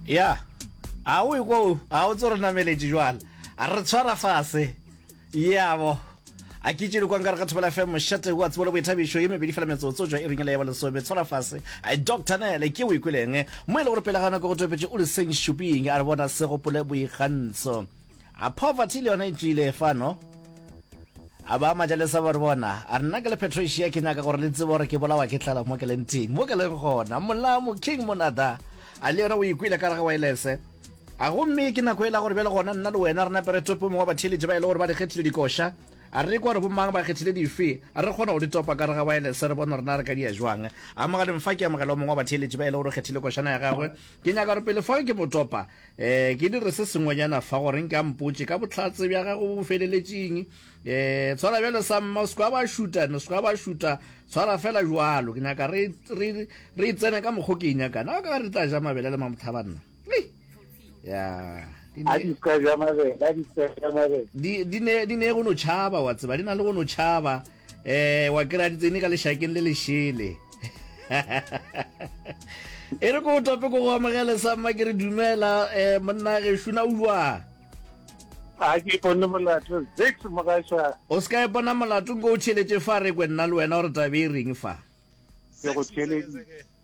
ya a o ekwo a o tso re nameletše jwala a re tshwara fase yabo a ke tšele kwang ka re ga thobela fm mošate wa tsebo le boithabišo ye mebedi fela metsotso jwa e ringele ya ba lesome tshwara fase a doctor nele ke o ikweleng mo e le gore pele ga nako go topetše o le seng šuping a re bona se gopole boikgantsho A poverty le yona e tšwile fano? A ba Majalesa ba re bona, a re nna ke le Patricia ke nyaka gore le tsebe gore ke bolawa ke tlala mo ke leng teng, mo ke leng gona, Molamu, King Monada. A le yena o ikwele ka gare ga waelese. A gomme ke nako ela gore bjale gona nna le wena re napere topo mongwe wa batheeletši ba e le gore ba re kgethile dikoša. A re kwa gore bo mang ba kgethile dife? A re kgona go di topa ka gare ga waelese re bone gore na re ka di ya jwang. Amogeleng fa ke amogela o mongwe wa batheeletši ba e le gore o kgethile košana ya gagwe. Ke nyaka gore pele fa ke mo topa Ee, ke dire se sengwenyana fa gore nka mpotše ka bohlatse bja gago bo bo feleletšeng. Ee, tshwara bjalo sa mma, o seka ba šuta, o seka ba šuta, tshwara fela jwalo. Ke nyaka re, re, re tsene ka mokgo ke e nyakana. A ka re tla ja mabele le mamothaba nna. Ya. A di ka ja mabele, a di ka ja mabele. Di, di ne, di ne go no tšhaba, wa tseba, di na le go no tšhaba. eh wa kira di tsene ka lešakeng le lešele e re ko tope ko go amogele sa mma ke re dumela eh monna ge shuna o jwa a ke bone molato six mogasha o se ka e bona molato ko o tšheletse fa re kwe nna le wena gore tabe e reng fa ke go tšheletse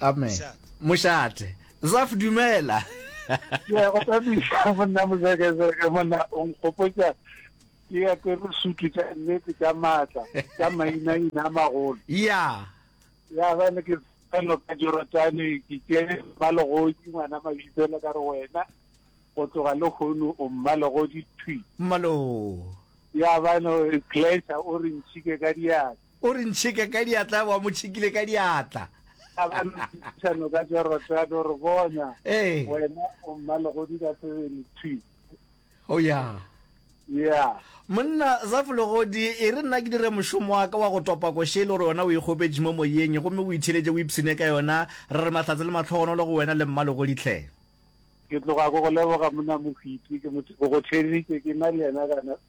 Amen. Mošate. Zaf dumela. Ya go tsamisa monna mozekezeke monna o nkgopotsa ke ya ke re sutu tša nnete tša maatla tša mainaina a magolo. Ya. Ya ba ne ke felo ka Jorodane ke tsere mmalogodi ngwana mabitsela ka re wena go tloga le kgono o mmalogodi thwi. Mmalo. Ya ba no glacier o re ntšhike ka diatla. O re ntšheka ka diatla, wa mo tšhekile ka diatla. A ba ntšhano ka jarata, a no re bona. Ee. Wena o mmalegodi ka sebele, thwi. O ya. Ya. Monna Zafulegodi, e re nna ke dire mošomo wa ka wa go topa koše e le gore wena o e kgopetše mo moyeng, gomme o itheletše o ipshine ka yona. Re re mahlatse le matlhogonolo go wena le mmalegodi hle. Ke tloga ke go leboga, monna Mohwiti, ke mo, ke go theeditše ke na le yena kana,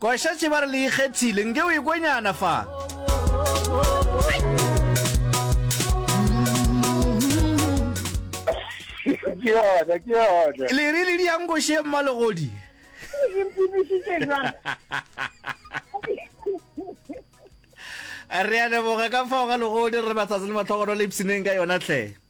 Kwa šetše ba re le ikgethile, nke o ekwe nyana fa. Ke yona, ke yona. Le re le diankoše mmalegodi. Le mpimisitše jwang? Re a leboga ka fao ga legodi re matsatsi le matlhogono le ipsineng ka yona tlhe.